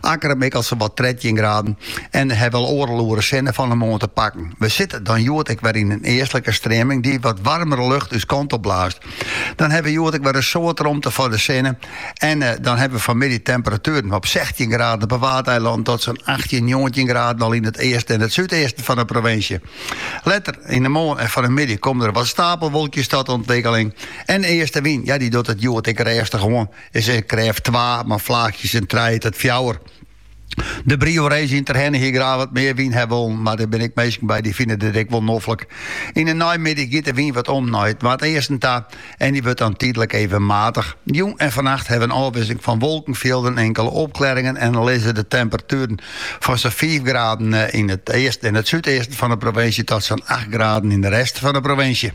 Akkrum mikket sawat trettjin graden en hawwe al oardel oere sinne fan 'e moarn te pakken. We sitte dan hjoed ek wer yn in eastlike streaming dy't wat waarmere lucht ús kant op blaast. Dan hawwe we hjoed ek wer in soad romte foar de sinne en dan hawwe we fanmiddei temperatueren op sechtjin graden op 'e Waadeilannen tot sa'n achttjin, njoggentjin graden al yn it easten en it súdeasten fan 'e provinsje. Letter yn 'e moarn en fannemiddei komme der wat stapelwolkjes tot ûntwikkeling en eastewyn, ja dy docht it hjoed ek rêstich oan. Is in krêft twa, mar flaachjes in trije tot fjouwer. De Brio Race yn Terherne hie graach wat mear wyn ha wollen, mar der binne ek minsken by dy fine dit ek wol noflik. Yn de neimiddei giet de wyn wat om nei it noardeasten ta en dy wurdt dan tydlik even matich. Jûn en fannacht ha we in ôfwisseling fan wolkenfjilden, inkele opklearringen en lizze de temperatueren fan sa'n fiif graden yn it easten en it súdeasten fan de provinsje tot sa'n acht graden yn de rest fan de provinsje.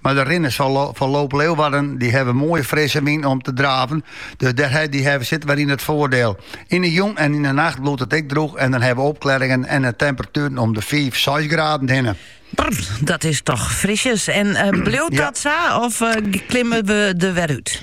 Mar de rinners fan Loop Leeuwarden dy hawwe moaie frisse wyn om te draven, dus dêr hawwe se it waar yn it foardiel. Yn de jûn en yn de nacht bliuwt it ek drûch en dan hawwe we opklearringen en de temperatueren om de fiif, seis graden hinne. Brr, dat is toch frisjes. En bliuwt dat sa of klimme we der wer út?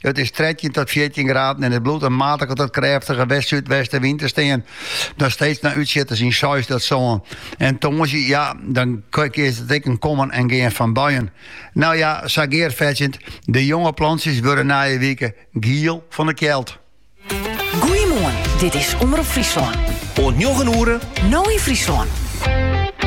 It is trettjin tot fjirtjin graden en it bliuwt in matige tot krêftige west-súdwestenwyn te stean. Dan steeds mei útsjitters in seis tot sân. En tongersdei, ja, dan is it ek in kommen en gean fan buien. No ja, sa gearfetsjend, de jonge plantsjes wurde nije wike giel fan de kjeld. Goeiemoarn, dit is Omrop Fryslân. Oant njoggen oere. No yn Fryslân.